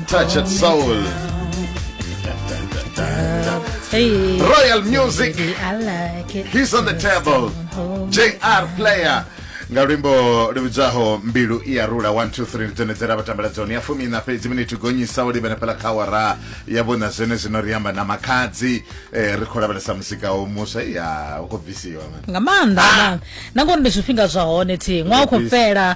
Touch It Soul. Hey. Royal Music. Baby, I like it. He's on the table. JR Player. nga luimbo lu vhidzwaho mbilu i ya rula 123 ndi dzone dze ra vhatambela dzone ya fumi na fhedzi miniti gonyisa u livhana fhela kha awara ya vhona zwene zwino ri amba na makhadzi eh, ri khou lavhelesa musika wo muswa iya u khou bvisiwa man nga maanḓa nga maanḓa na ngori ndi zwifhinga zwa hone thi ṅwaha u khou Yes. fhela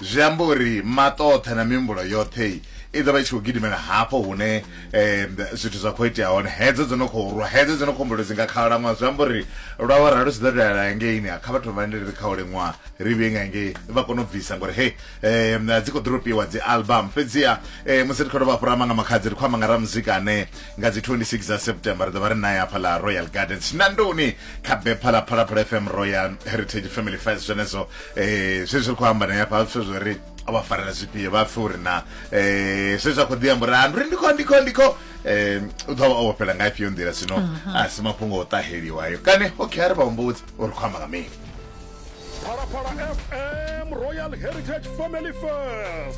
Zwi amba uri maṱo oṱhe na mihumbulo yoṱhe i ḓo vha i tshi khou gidimela hafho hune um zwithu zwa khou itea hone hedzo dzo no khou rwa hedzo dzo no khou humbula dzi nga khalaṅwaha zwi amba uri lwa wa ralo zwi ḓo dalela hangeini kha vhathu vha ndele ri kha u liṅwaha ri vhuye nga ngei vha kone u bvisa ngori he um dzi khou ḓoropiwa dzi album fhedziha um musi ri khou dovha fhura amba nga makhadzi ri khou amba nga ramuzika ane nga dzi 26 dza september ri ḓo vha ri naye hafha ḽa royal gardens nandoni kha bepha ḽa phalaphala fm royal heritage family fest zwenezwo eh zwe zwi khou amba na ya pha zwo ri a vha farela zwifhio vha pfe uri na eh zwe zwa khou ḓi amba uri ah, ndi ndi kho ndi kho ndi kho eh u ḓo vha o fhela nga ifhio nḓila sino mhm. a si mafhungo o ṱaheliwa ayo kane okay a ri vha humbudzi uri khou amba nga mini Phalaphala FM Royal Heritage Family First